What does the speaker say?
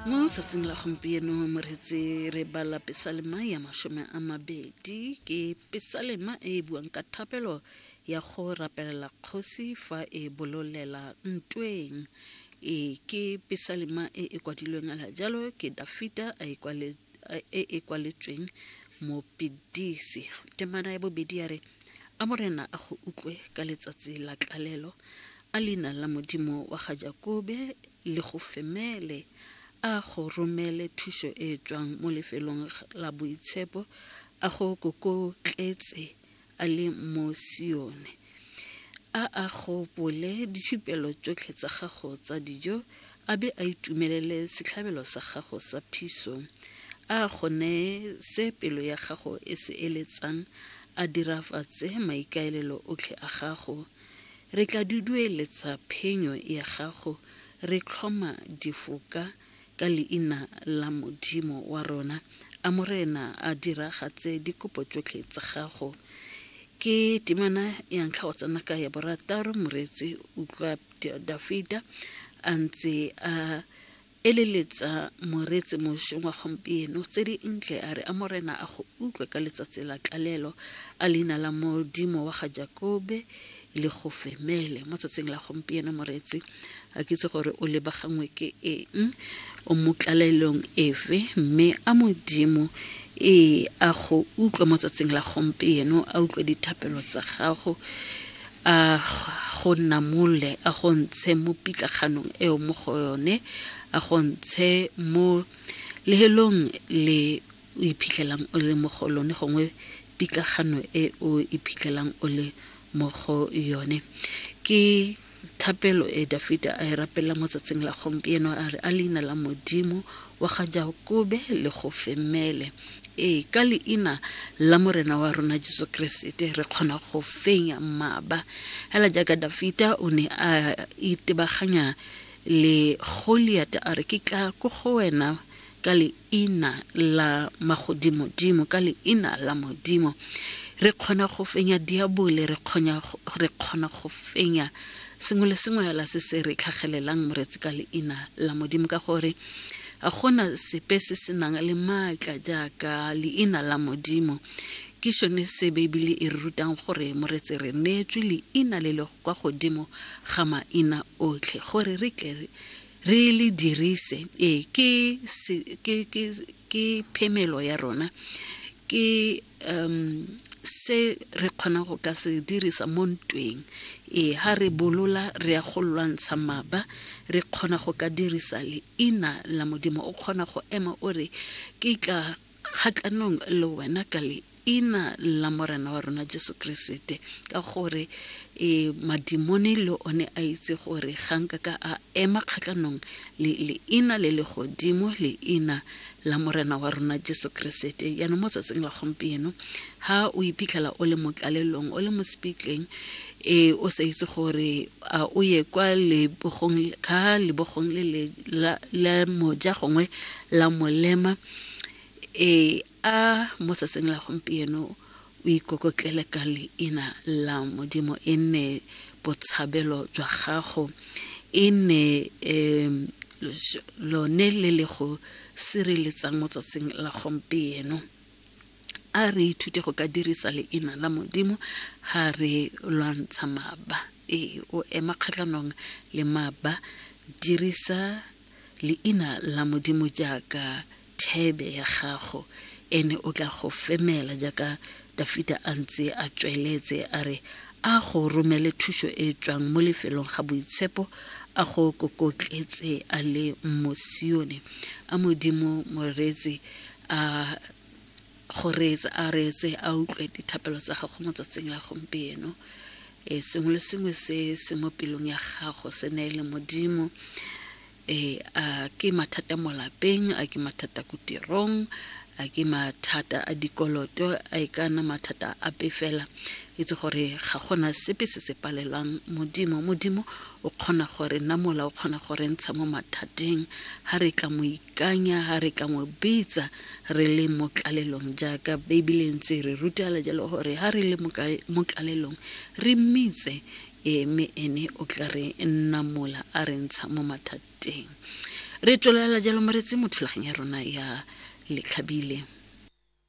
mo tsatsing la gompieno moreetse re bala pesalema ya masome a mabedi ke pesalema e e buang ka thapelo ya go rapelela kgosi fa e bololela ntweng e ke pesalema e e kwadilweng ala jalo ke dafita a e kwaletse e e kwaletsweng mopedisi temana ya bobedi ya re a morena a go utlwe ka letsatsi la tlalelo A leina la Modimo wa ga Jakobe le go femele, a go romele thušo e tšwang mo lefelong la boitshepo, a go kokotletse a le mo Sione. A a gopole ditšhupelo tšotlhe tsa gago tsa dijo, a be a itumelele setlhabelo sa gago sa phiso. A go neye se pelo ya gago e se eletsang, a dirafatse maikaelelo otlhe a gago. Re tla dudueletsa phenyo ya gago re tlhoma difoka ka leina la Modimo wa rona. A Morena a diragatse dikopo tsotlhe tsa gago. Ke temana ya ntlha go tsena ka ya borataro, Moreetsi utlwa Dafida a ntse a eleletsa moreetsi mošweng wa gompieno tse di ntle a re a morena a go utlwe ka letsatsi la tlalelo a leina la modimo wa ga jakobe le go femele mo tsatsing la gompieno moreetsi a kitse gore o lebagangwe ke eng o mo tlalelong efe mme a modimo ee a go utlwe mo tsatsing la gompieno a utlwe dithapelo tsa gago A go namole, a go ntshe mo pitlaganong eo mo go yone, a go ntshe mo lehelong le o iphitlhelang o le mo go lone gongwe pitlagano e o iphitlhelang o le mo go yone. Ke thapelo e Dafita a e rapelela mo tsatsing la gompieno a re, A leina la Modimo wa ga Jakobe le go femele. Ee, ka leina la Morena wa rona Jesu Keresete re kgona go fenya mmaba. Hela jaaka Dafita o ne a itebaganya le Goliata a re ke tla ko go wena ka leina la magodimodimo ka leina la modimo re kgona go fenya diabole re kgona go fenya sengwe le sengwe hela se se re tlhagelelang moretsi ka leina la modimo ka gore ga gona sepe se se nang le maatla jaaka leina la modimo ke sone se beibele e re rutang gore moretse re neetswe leina le le kwa godimo ga maina otlhe gore re tle re le dirise ee ke Ke phemelo ya rona, ke se re kgonang go ka se dirisa mo ntweng. Ee, ha re bolola re ya go lwantsha maba, re kgona go ka dirisa leina la Modimo. O kgona go ema o re, ke tla kgatlhanong le wena ka leina. ina la morena wa rona jesu keresete ka gore e madimone le one a itse gore ga nka ka a ema kgatlhanong le leina le le godimo leina la morena wa rona jesu keresete jaanong mo tsatsing la gompieno ga o iphitlhela o le mo tlalelong o le mo sepitleng e o sa itse gore a o ye kwa lebogong ka lebogong le la moja gongwe la molema e A mo tsatsing la gompieno o ikokotlele ka leina la Modimo, e nne botshabelo jwa gago, e nne um lone le le go sireletsang mo tsatsing la gompieno. A re ithute go ka dirisa leina la Modimo ha re lwantsha maba. Ee, o ema kgatlhanong le maba, dirisa leina la Modimo jaaka thebe ya gago, ene o tla go femela jaaka Dafita a ntse a tsweletse a re a go romele thuso e e tswang mo lefelong ga boitshepo, a go kokotletse a le mo Sione. A Modimo Moreetsi a go reetse a reetse a utlwe dithapelo tsa gago mo tsatsing la gompieno e sengwe le sengwe se se mo pelong ya gago se ne le modimo e a ke mathata mo lapeng a ke mathata ko tirong a ke mathata a dikoloto a e ka nna mathata a pe fela itse gore ga gona sepe se se palelwang modimo modimo o kgona gore nna mola o kgona gore ntsha mo mathateng ga re ka mo Ikanya ga re ka mo bitsa re le mo tlalelong jaaka Beibele ntse re rutela jalo gore ga re le mo tlalelong re mmitse e mme ene o tla re namola a re ntsha mo mathateng. Re tswelela jalo moretsi mo thulaganyo ya rona ya letlhabile.